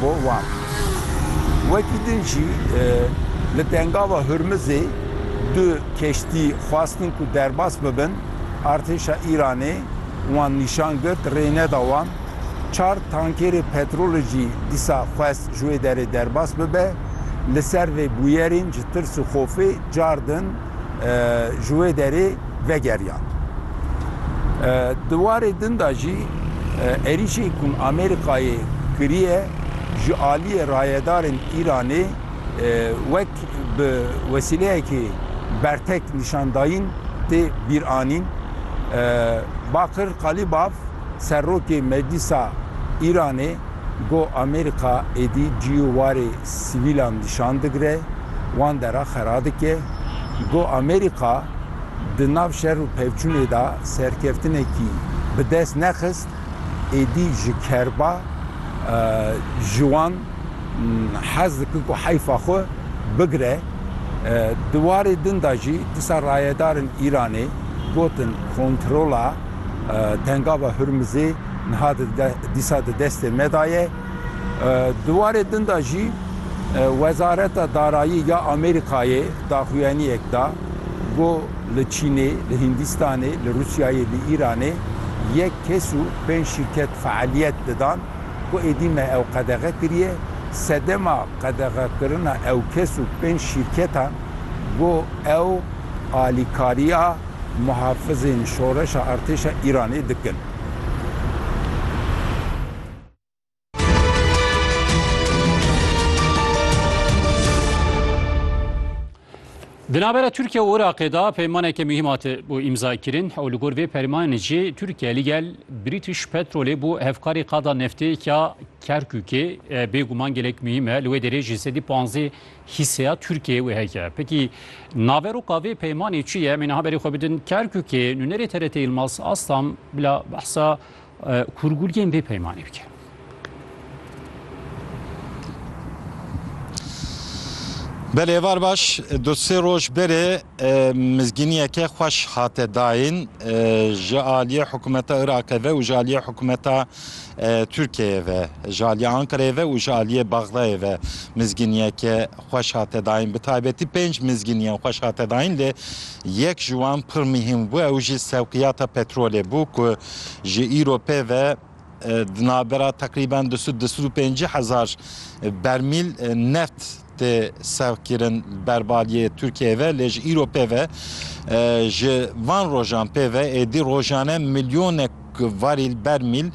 Bo wan. Wekî din jî li Dengava Hurmizê du keştî xwestin ku derbas bibin, artêşa Îranê wan nîşan girt, rê neda wan. Çar tankêrê petrolê jî dîsa xwest ji wê derê derbas bibe. Li ser vê bûyerên ji tirs û xofê car din. ji wê derê vegeriyan. Di warê din de jî êrîşê ku Amerîkayê kiriye ji aliyê rayedarên Îranê wek bi wesîleyekê bertek nîşandayîn tê bîranîn. Bakir Qalibav, Serokê Meclîsa Îranê got Amerîka êdî ciyû warê sivîlan dişan digire, wan dera xera dike. Got Amerîka di nav şer û pevçûnê de serkeftinekî bi dest nexist, êdî ji kerba ji wan hez dike ku heyfa xwe bigire. Di warê din de jî disa rayedarên Îranê gotin kontrola. Tengava Hurmizê niha dîsa di destê me de ye. Di warê din de jî Wezareta Darayî ya Amerîkayê daxuyaniyek da ku li Çînê, li Hîndîstanê, li Rûsyayê, li Îranê yek kes û pênc şîrket fealiyet didan ku êdî me ew qedexe kiriye. Sedema qedexekirina ew kes û pênc şîrketan ku ew alîkariya. Muhafizên şoreşa artêşa Îranê dikin. Di navbera Tirkiye û Iraqê de peymaneke muhîm hat bû îmzakirin û li gor vê permanê jî Tirkiye li gel British Petrolê bû hevkarê qada neftêk ya Kerkûkê. Bêguman gelek muhîm e li wê derê jî sedî panzdeh Hîseya Tirkiyeyê wê heke. Pekî naveroka vê peymanê çi ye? Em ê niha berê xwe bidin Kerkûkê. Nûnerê TRT Yilmaz Aslan bila behsa kurguliyên vê peymanê bike. Belê êvar baş du sê roj berê mizgîniyeke xweş hate dayîn ji aliyê hikûmeta Iraqê ve û ji aliyê hikûmeta Tirkiyeyê ve, ji aliyê Ankarayê ve û ji aliyê Bexdayê ve mizginiyeke xweş hate dayîn. Bi taybetî pênc mizginiyan xweş hate dayîn lê yek ji wan pir mihîm bû ew jî sewqiyata petrolê bû ku ji îro pê ve di navbera teqrîben du sed du sed û pêncî hezar bermîl neft tê serkirin li ber baliyê Tirkiyeyê ve lê ji îro pê ve ji van rojan pê ve êdî rojane milyonek varîl bermîl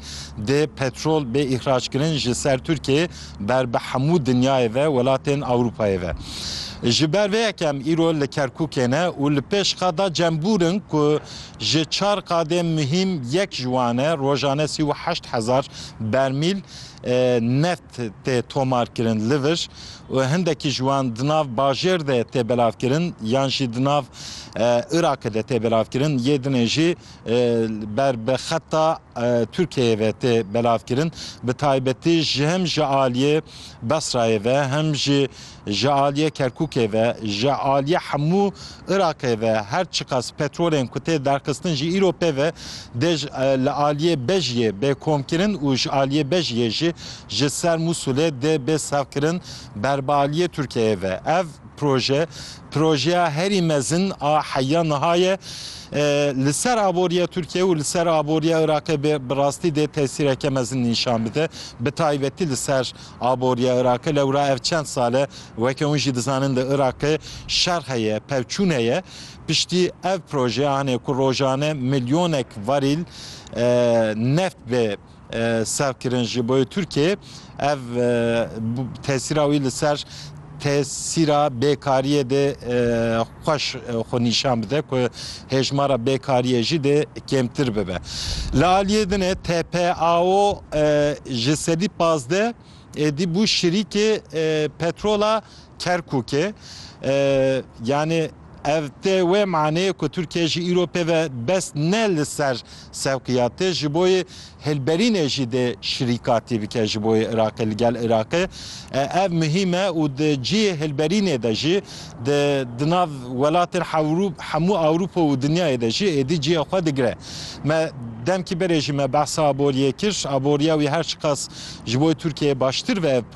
dê petrol bê îhraçkirin ji ser Tirkiyeyê ber bi hemû dinyayê ve welatên Ewropayê ve. Ji ber vê yek em îro li Kerkûkê ne û li pêş qada Cembûr in ku ji çar qadên muhîm yek ji wan e rojane sî û heşt hezar bermîl neft tê tomarkirin li vir û hindekî ji wan di nav bajêr de tê belavkirin yan jî di nav Iraqê de tê belavkirin yê dinê jî ber bi xeta Tirkiyeyê ve tê belavkirin bi taybetî ji hem ji aliyê Besrayê ve hem jî Ji aliyê Kerkûkê ve, ji aliyê hemû Iraqê ve her çiqas petrolên ku tê derxistin jî îro pê ve dê li aliyê Bejiyê bê komkirin û ji aliyê Bejiyê jî ji ser Mûsulê dê bê sevkirin ber bi aliyê Tirkiyeyê ve. Ev proje projeya herî mezin a heya niha ye li ser aboriya Tirkiyeyê û li ser aboriya Iraqê bi rastî dê tesîreke mezin nîşan bide, bi taybetî li ser Aboriya Iraqê lewra ev çend sal e weke hûn jî dizanin li Iraqê şer heye, pevçûn heye. Piştî ev proje anê ku rojane milyonek varîl neft bê serkirin ji bo Tirkiyeyê. Ev tesîra wî li ser tesîra bêkariyê dê xweş xwe nîşan bide ku hêjmara bêkariyê jî dê kêmtir bibe. Li aliyê din e TPAO ji sedî pazdeh êdî bû şirîkê petrola Kerkûkê. Yanî Ev tê wê maneyê ku Tirkiye jî îro pêve bes ne li ser sewqî ya tê ji bo yê hilberînê jî dê şirîkatî bike ji bo yê Iraqê li gel Iraqê. Ev muhîm e û di cihê hilberînê de jî di di nav welatên hemû Ewropa û dinyayê de jî êdî cihê xwe digire. Me demkî berê jî me behsa Aboriyê kir. Aboriya wî her çiqas ji bo yê Tirkiyeyê baştir be ev